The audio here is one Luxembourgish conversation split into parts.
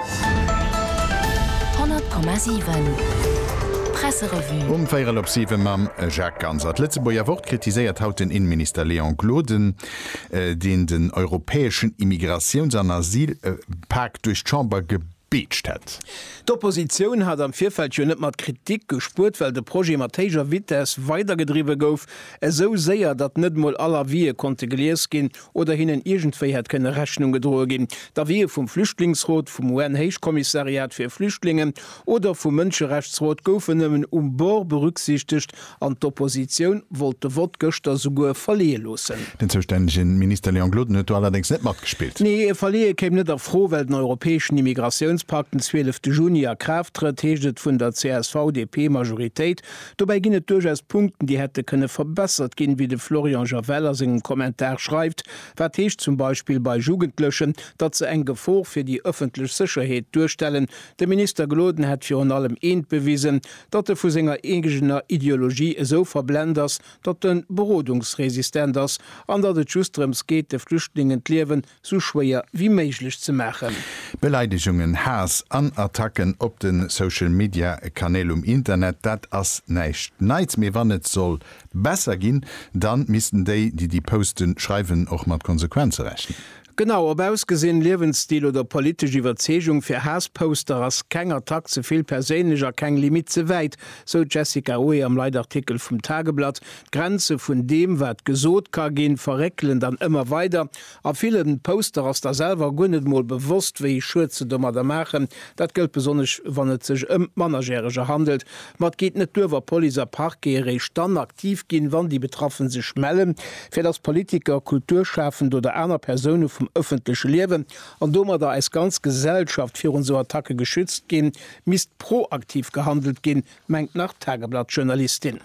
100,7 Presserevue Um véierel op siwe mam Jacques Ganser. D'Lëtzebuerger Wort kritiséiert haut den Inneminister Léon Gloden, deen den europäeschen Immigratiouns an Asylpak duerch d'Chamber gebeetscht hätt. D'Oppositioun hat am Virfeld jo net mat Kritik gespuert, well de Projet mat héijer Vitess weidergedriwwe gouf, esou séier, datt net emol all Avisë konnte gelies ginn, oder hinnen iergendwéi hätt kënne Rechnung gedroe ginn, da wier vum Flüchtlingsrot, vum UN-Héichkommissariat fir Flüchtlingen oder vum Mënscherechtsrot gouf en nëmmen um Bord berücksichtegt an d'Oppositioun wollt de Vott gëschter souguer verleeë loossen. Den zoustännege Minister Léon Gloden huet do allerdéngs net matgespillt. Nee, e Verleeë kéim net a Fro, well den europäeschen Immigratiounspakt den 12 Juni a Kraaft trëtt, heescht et vun der CSV-DP-Majoritéit. Dobäi ginn et duerchaus Punkten, déi hätte kënne verbessert ginn, wéi de Florian Javel a sengem Kommentar schreift. Wat heescht zum Beispill bei Jugendlechen, datt se eng Gefor fir déi ëffentlech Sécherheet duerstellen? De Minister Gloden hätt virun allem eent bewisen, datt e vu senger eegener Ideologie esou verblent ass, datt e berodungsresistent ass an datt et just drëms geet, de Flüchtlingen d'Liewen sou schwéier wéi méiglech ze maachen. Beleidigungen, Haass an Attacken op de Social Media Kanäl um Internet, dat ass näischt Neits. Mee wann et soll besser ginn, dann missten déi, déi déi Posten schreiwen, och mat Konsequenze rechnen. Genau, ob Ausgesinn, Liewensstil oder politesch Iwwerzeegung, fir Haassposter ass keng Attack ze vill perséinlech a keng Limitt ze wäit, sou d'Jessica Oe am Leitartikel vum Tageblatt. D'Grenze vun deem, wat gesot ka ginn, verréckelen dann ëmmer weider. A villen Poster ass der selwer guer net emol bewosst wéi Schued se domadder maachen. Dat gëllt besonnesch wann et sech ëm Mannerjäreger handelt. Ma et geet net duer wa Police a Parquet eréischt dann aktiv ginn, wann déi Betraffen sech mellen, fir dass Politiker, Kulturschafend oder aner Persoune vum ëffentleche Liewen, an domadder eis ganz Gesellschaft, virun esou Attacke geschützt ginn, misst proaktiv gehandelt ginn, mengt nach d'Tageblatt-Journalistin.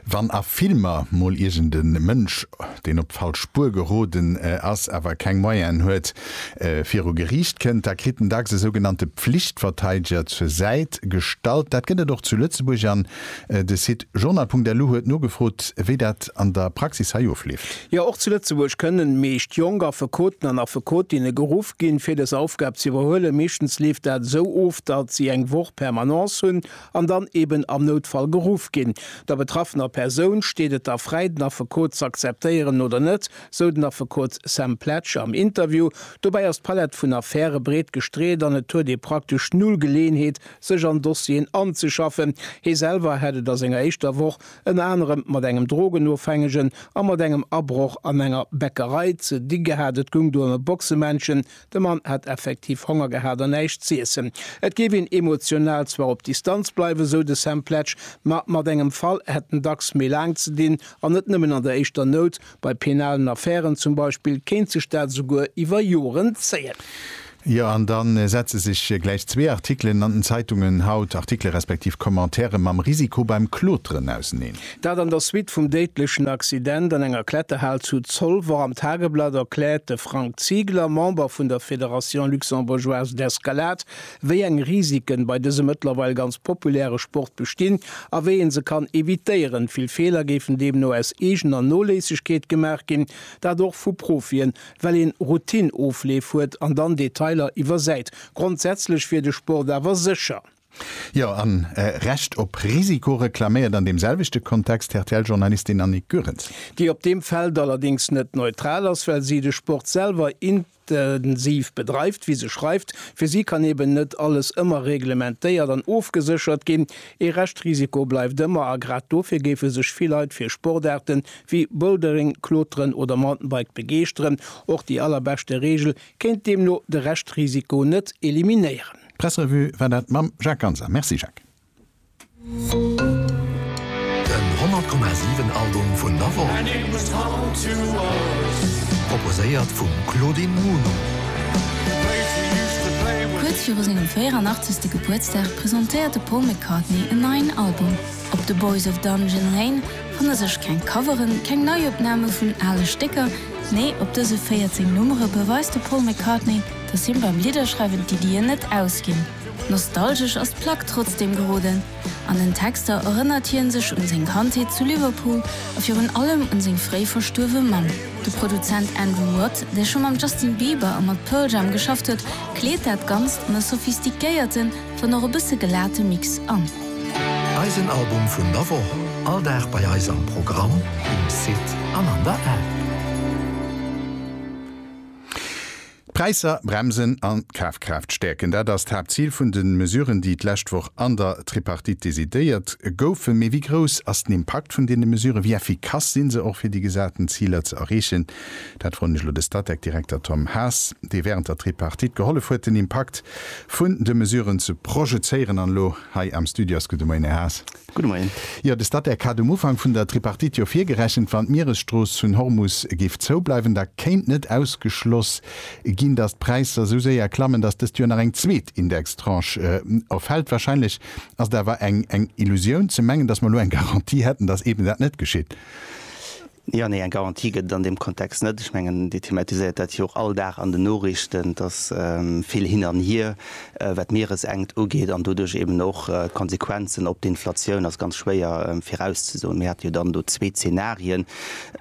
Wann a Filmer mol iergend e Mënsch, deen op d'falsch Spuer geroden ass, awer keng Moyenen huet, viru Geriicht kënnt, da kritt en dacks e sougenannte Pflichtverteideger zur Säit gestallt. Dat gëtt et och zu Lëtzebuerg an de Site journal.lu huet nogefrot, wéi dat an der Praxis hei ofleeft. Jo, och zu Lëtzebuerg kënnen meescht jonk Affekoten an Affekotinne geruff ginn, fir dës Aufgab ze iwwerhuelen. Meeschtens leeft dat esou of, datt si eng Woch Permanence hunn an dann eben am Noutfall geruff ginn. Der betraffener Persoun steet et da fräi, den Affekot z'akzeptéieren oder net, sou den Affekot Sam Pletsch am Interview. Dobäi ass d'Palett vun Affäre breet gestreet an et huet ee praktesch null Geleeënheet, sech an Dossieren anzeschaffen. Hie selwer hätt et a senger éischter Woch ënner anerem mat engem Drogenofhängegen a mat engem Abroch an enger Bäckerei ze di gehat. Et goung do ëm e Boxemännchen. De Mann hätt effektiv Honger gehat an näischt z'iessen. Et géif een emotional zwar op Distanz bleiwen, sou de Sam Pletsch, ma mat engem Fall hätt en dacks méi laang ze dinn. An net nëmmen an der éischter Nout, bei penalen Affären zum Beispill kéint sech dat esouguer iwwer Joren zéien. Jo, an da setze sech gläich zwee Artikelen an den Zeitungen haut, Artikele respektiv Commentaire mam Risiko beim Kloteren, auseneen. Dat an der Suite vum déidlechen Accident an enger Kletterhal zu Zolwer. Am Tageblatt erkläert de Frank Ziegler, Member vun der Fédération luxembourgeoise d'escalade, wéi eng Risiken bei dësem mëttlerweil ganz populäre Sport bestinn a wéi ee se kann evitéieren. Vill Feeler géifen deemno aus eegener Noléissegkeet gemaach ginn, dat och vu Profien, well een Routine-Ofleef huet an dann Detailer iwwersäit. Grondsätzlech wier de Sport awer sécher. Jo, an e Recht op Risiko reklaméiert an deem selwechte Kontext d'RTL-Journalistin Annick Goerens. Déi op deem Feld allerdéngs net neutral ass, well si de Sport selwer intensiv bedreift, wéi se schreift. Fir si kann eben net alles ëmmer reglementéiert an ofgeséchert ginn. Ee Reschtrisiko bleift ëmmer a grad dofir géife sech vill Leit fir Sportaarte wéi Bouldering, Kloteren oder Mountainbike begeeschteren. Och déi allerbeschte Reegel kéint deemno de Reschtrisiko net eliminéieren. D'Pressrevue war dat mam Jacques Ganser. Merci Jacques. Den 100,7 Album vun der Woch. Proposéiert vum Claudine Muno. Kuerz viru sengem 84. Gebuertsdag presentéiert de Paul McCartney en neien Album. Op The Boys of Dungeon Lane fanne sech keng Coveren, keng Neiopname vun ale Stécker, nee op dëse 14 Nummere beweist de Paul McCartney, dass him beim Lidderschreiwen d'Iddien net ausginn. Nostalgesch ass d'Plack trotzdeem geroden. An den Texter erënnert hien sech un seng Kandheet zu Liverpool a virun allem un seng fréi verstuerwe Mamm. De Produzent Andrew Watt, dee scho mam Justin Bieber a mat Pearl Jam geschafft huet, kleet dat Ganzt an e sophistiquéierten, wann och e bësse gelate Mix an. Eisen Album vun der Woch, all Dag bei eis am Programm, um Site an an der App. D'Präisser bremsen an d'Kafkraaft stäerken, dat ass d'Haaptzil vun de Mesuren, déi d'lescht Woch an der Tripartite decidéiert goufen. Mee wéi grouss ass den Impakt vun deene Mesuren? Wéi effikass sinn se och fir déi gesaten Ziler ze erreechen? Dat froen ech elo de Statec-Direkter Tom Haas, dee wärend der Tripartite gehollef huet, den Impakt vun de Mesuren ze projezéieren an elo hei am Studio ass. Gudde Moien, Här Haas. Gudde Moien. Jo, de Statec hat um Ufank vun der Tripartite jo virgerechent, wann d'Mieresstrooss vun Hormus géif zoubleiwen, da kéint net ausgeschloss ginn, datt d'Präisser esou séier klammen, datt dëst Joer nach eng zweet Indextranche erfält. Wahrscheinlech ass et awer eng Illusioun ze mengen, datt mer elo eng Garantie hätten, datt eeben dat net geschitt. Jo, nee, eng Garantie gëtt et an deem Kontext net. Ech mengen, Dir thematiséiert dat jo och all Dag an den Noriichten, dass vill hin an hier, wat d'Mieresenkt ugeet an doduerch eeben och d'Konsequenzen op d'Inflatioun, ass ganz schwéier virauszesoen. Mir hate jo dann do zwee Zenarien.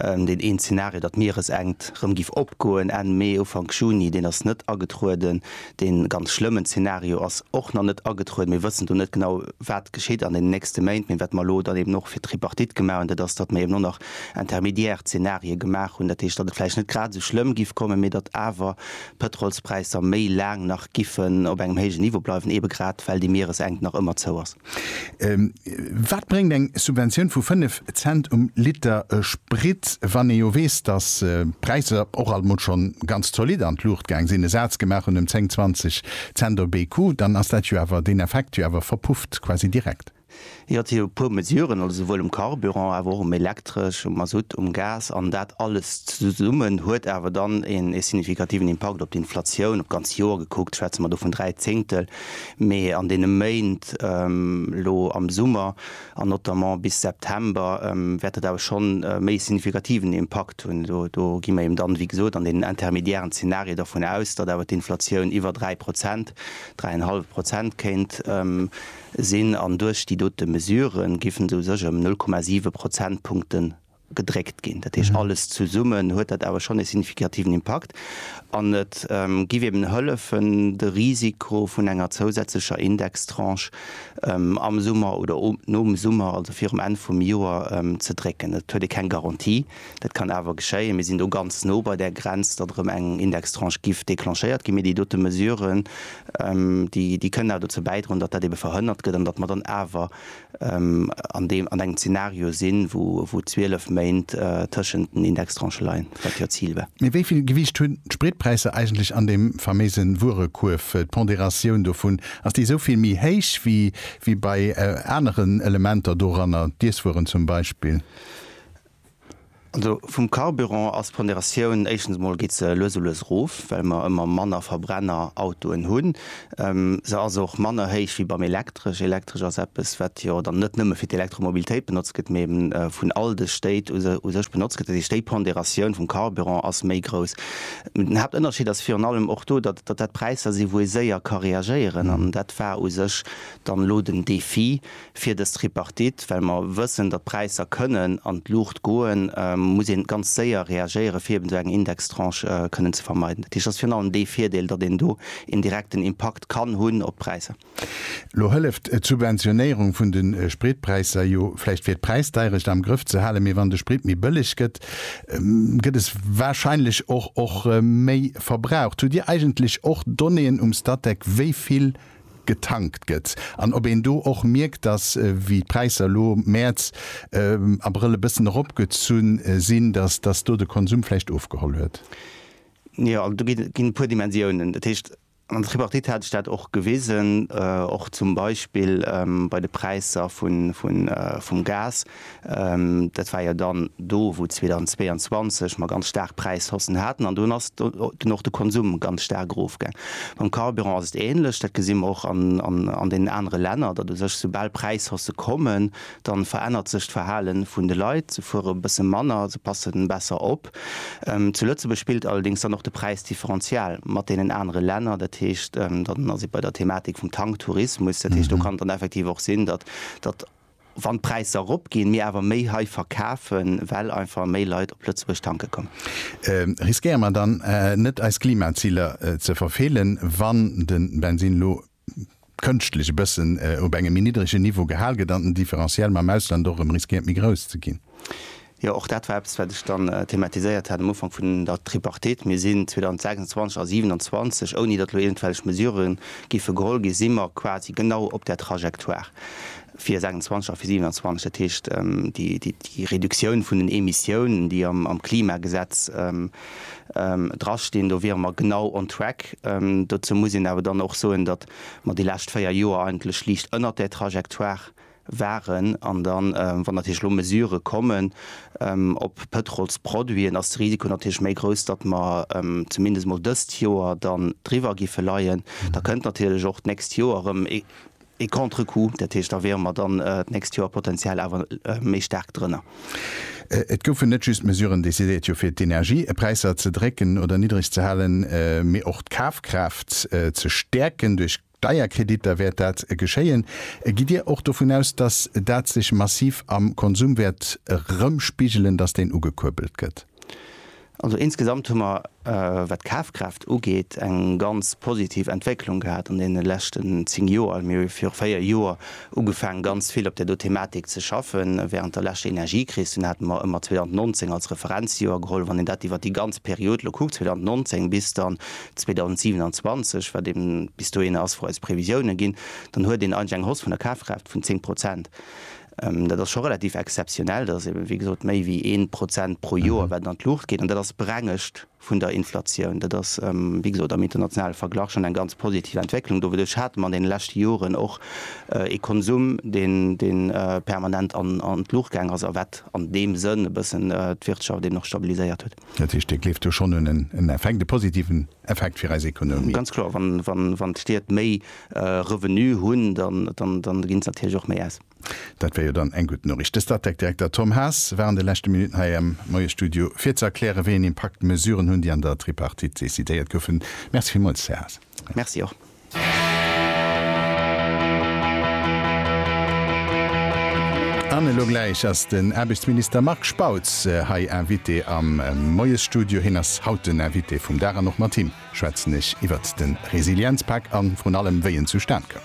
Deen een Zenario, datt d'Mieresenkt erëm giff opgoen Enn Mee, Ufank Juni, deen ass net agetrueden. Dee ganz schlëmmen Zeenario ass och nach net agetrueden. Mir wëssen do net genau, wat geschitt an deenen nächste Méint. Mee wat mer elo dann eben och fir d'Tripartite gemaach hunn, dat ass, datt mer eben och nach intermédiaire Zeenarië gemaach hunn. Dat heescht, datt et vläicht net grad esou schlëmm giff kommen, mee datt awer d'Pëtrolspräisser méi laang nach giffen op engem héijen Niveau bleiwen, eebe grad well déi Mieresenkt nach ëmmer zou ass. Wat bréngt eng Subventioun vu 5 Cent um Liter Sprit, wann ee jo weess, datt d'Präisser och alt mol schonn ganz zolidd an d'Luucht gaang sinn, e Saz gemaach hunn ëm 10, 20 Cent op ee Coup, dann ass dat jo awer, deen Effekt jo awer verpufft quasi direkt. Jo, et si jo e puer Mesuren, also souwuel um Carburant, awer och um Elektresch, um Masutt, um Gas, an dat alles zesummen huet awer dann ee signifikativen Impakt op d'Inflatioun, op d'ganz Joer gekuckt schwätze mer do vun dräi Zéngtel, Mee an deene Méint elo am Summer an notamment bis September wäert dat awer schonn e méi signifikativen Impakt hunn. Do gi mer eben dann, wéi gesot, an deenen intermediären Zenarie dervun aus, datt awer d'Inflatioun iwwer dräi Prozent, dräi an e hallwe Prozent kéint sinn. An duerch déi dote Mesurë giffen se u sech ëm null Komma siwe Prozentpunkte gedréckt ginn. Dat heescht, alles zesummen huet dat awer schonn e signifikativen Impakt an et giff eben hëllefen, de Risiko vun enger zousätzlecher Indextranche am Summer oder nom Summer, also virum Enn vum Joer, ze drécken. Et huet ee keng Garantie, dat kann awer geschéien. Mir sinn do ganz no bei där Grenz, datt erëm eng Indextranche giff declenchéiert ginn, mee déi dote Mesuren, déi kënnen awer dozou bäidroen, datt dat ebe verhënnert gëtt an datt mer dann awer an deem an engem Zeenario sinn, wou 12 Méint tëschent den Indextranchë leien, wat jo d'Zil war. Mee wéi vill Gewiicht hunn d'Spritpräisser eigentlech an deem faméise Wuerekuerf? D'Ponderatioun dovun, ass déi esou vill méi héich wéi bei aneren Elementer doranner, d'Iesswueren zum Beispill? Also vum Carburant ass d'Ponderatioun, éischtens emol geet se lues a lues erof, well mer ëmmer manner Verbrennerautoen hunn. Se ass och manner héich wéi beim Elektresch. Elektresch ass eppes, wat jo dann net nëmme fir d'Elektromobilitéit benotzt gëtt, mee eben vun all de Stéit u sech benotzt gëtt. Dat heescht, déi Ponderatioun vum Carburant ass méi grouss. Den Haaptënnerscheed ass virun allem och do, datt dat Präisser sinn, wou ee séier ka reagéieren. An dat war u sech dann elo den Defi, Fir dës Tripartite, well mer wëssen, datt d'Präisser kënnen an d'Luucht goen, muss ee ganz séier reagéieren, fir eben esou eng Indextranche kënnen ze vermeiden. Dat heescht, dat ass virun allem dee Virdeel, datt een do een direkten Impakt kann hunn op d'Präisser. Elo hëlleft d'Subventionéierung vun de Spritpräisser jo vläicht fir d'Präisdeirecht am Grëff ze halen, mee wann de Sprit méi bëlleg gëtt, gëtt es wahrscheinlech och och méi verbraucht. Hutt Dir eigentlech och Donnéeën um Statec, wéi vill getankt gëtt an ob een do och mierkt, dass, wéi d'Präisser elo Mäerz, Abrëll e bëssen eropgezu sinn, dass, dass do de Konsum vläicht ofgeholl huet. Jo, also do ginn e puer Dimensiounen. Dat heescht, an der Tripartite hat sech dat och gewisen, och zum Beispill bei de Präisser vun, vun, vum Gas. Dat war jo dann do, wou 2022 mer ganz staark Präishaussen haten, an dunn ass dunn och de Konsum ganz staark erofgaang. Mam Carburant ass et änlech. Dat gesi mer och an deenen anere Länner, datt u sech, soubal Präishausse kommen, da verännert sech d'Verhale vun de Leit. Se fuere e bësse manner, se passe besser op. Zu Lëtzebuerg spillt allerdéngs dann och de Präisdifferential mat deenen anere Länner. Dat heescht, dann ass ee bei der Thematik vum Tanktourismus. Dat heescht, do kann et dann effektiv och sinn, datt Wann d'Präisser eropginn, mir awer méi hei verkafen, well einfach méi Leit op Lëtzebuerg tanke kommen. Riskéiere mer dann net eis Klimaziler ze verfeelen, wann de Bensinn elo kënschtlech e bëssen op engem méi niddregen Niveau gehal gëtt an den Differentiel mam Ausland och erëm riskéiert méi grouss ze ginn? Jo, och dat war eppes, wat ech dann thematiséiert hat am Ufank vun der Tripartite. Mir sinn 2026 a 27, ouni datt elo iergendwelch Mesurë géife geholl ginn, si mer quasi genau op där Trajectoire fir 26 a fir 27. Dat heescht, déi Reduktioun vun den Emissiounen, déi am Klimagesetz drastinn, do wiere mer genau on track. Dozou muss een awer dann och soen, datt mer déi lescht véier Joer eigentlech liicht ënnert där Trajectoire waren an dann, wann natierlech elo Mesurë kommen op Pëtrolsproduiten, ass de Risiko natierlech méi grouss, datt mer zumindest emol dëst Joer dann driwwer giffe leien. Da kënnt natierlech och d'nächst Joer erëm e Contre-coup, dat heescht, da wiere mer dann d'nächst Joer potentiell awer méi staark drënner. Et goufen net just Mesuren decidéiert, jo fir d'Energiepräisser ze drécken oder niddreg ze halen, mee och d'Kafkraaft ze stäerken duerch. Steierkreditter, wäert dat geschéien? Gitt Dir och dovun aus, datt dat sech massiv am Konsum wäert erëmspigelen, datt deen ugekuerbelt gëtt? Also insgesamt hu mer, wat d'Kafkraaft ugeet, eng ganz positiv Entwécklung gehat an deene leschten zéng Joer. Mir hu viru véier Joer ugefaangen, ganz vill op där do Thematik ze schaffen, wärend der leschter Energiekris. Dunn hate mer ëmmer 2019 als Referenzjoer geholl. Wann een dat iwwer déi ganz Period elo kuckt, 2019 bis dann 2027, wat eben bis dohinner ass, wou eis Previsiounen ginn, dann huet een eigentlech eng Hausse vun der Kafkraaft vun 10 Prozent. Dat ass scho relativ exzeptionell. Dat ass eben, wéi gesot, méi wéi een Prozent pro Joer, wat et an d'Luucht geet. An dat ass brengescht vun der Inflatioun. Dat ass, wéi gesot, am internationale Verglach schonn eng ganz positiv Entwécklung. Doduerch hate mer an deene leschte Joren och ee Konsum, dee permanent an d'Luucht gaangen ass a wat an deem Sënn e bëssen d'Wirtschaft eben och stabiliséiert huet. Dat heescht, Dir gleeft do schonn un en Effekt, e positiven Effekt fir eis Ekonomie? Ganz kloer, wann d'Stied méi Revenue hunn, dann ginn se natierlech och méi aus. Dat wär jo dann eng gutt Noriicht. De Statec-Direkter Tom Haas war an de leschte Minutten hei am Moiesstudio, fir ze erklären, wéi een Impakt d'Mesuren hunn, déi an der Tripartite decidéiert goufen. Merci villmools, Här Haas. Merci och. An elo gläich ass den Aarbechtsminister Marc Spautz hei Invité am Moiesstudio. Hien ass haut den Invité vum Dag an och mat him schwätzen ech iwwert de Resilienzpak an vrun allem, wéi en zustan koum.